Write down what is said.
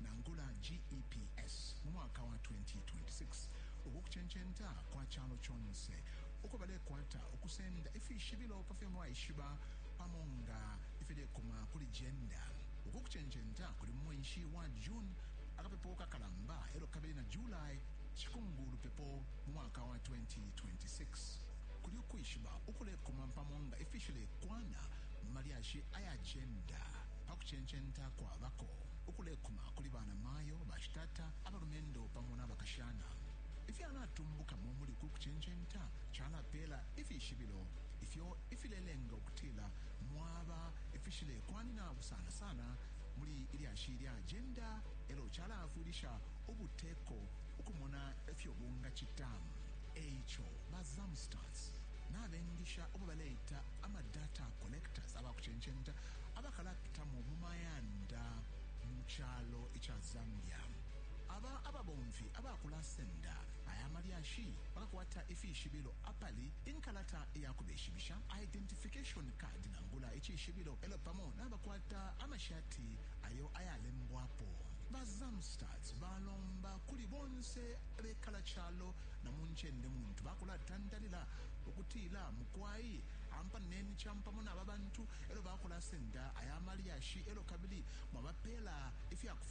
nangula GEPS mu mwaka wa 2026. Uku kucencenta kwa calo conse uko balekwata ukusenda ifishibilo pa fyo mwaishiba pamo nga ifilekuma kuli jenda. Uku kucencenta kuli mu mwenshi wa June akapepo kakalamba elyo kabili na July cikungu lupepo mu mwaka wa 2026. Kuli ukwishiba ukulekuma pamo nga ifishilekwana mu malyashi aya jenda pa kucencenta kwabako. ukulekuma kuli banamayo, bashitata, abalumendo pamo na bakashana. Ifyalatumbukamo muli uku kucencenta calapeela ifishibilo ifyo ifilelenga ukutila mwaba ifishilekwanina sana sana muli ilyashi lya ajenda elyo calaafwilisha ubuteko ukumona ifyo bungacita. E ico, ba Zamstas nabengisha ubo baleita ama data collectors, abakucencenta abakalapitamo mu mayanda mu calo ica Zambia. Aba ababomfi abakulasenda aya malyashi bakakwata ifishibilo apali inkalata ya kubeshibisha identification card nangula icishibilo elo pamo nabakwata amashati ayo ayalembwapo ba Zamstats balomba kuli bonse abekala calo na mu ncende muntu bakulatandalila ukutila mukwai ampaneni campamo naba bantu e lyo bakulasenda aya malyashi e lyo kabili mwabapela ifya kufwala.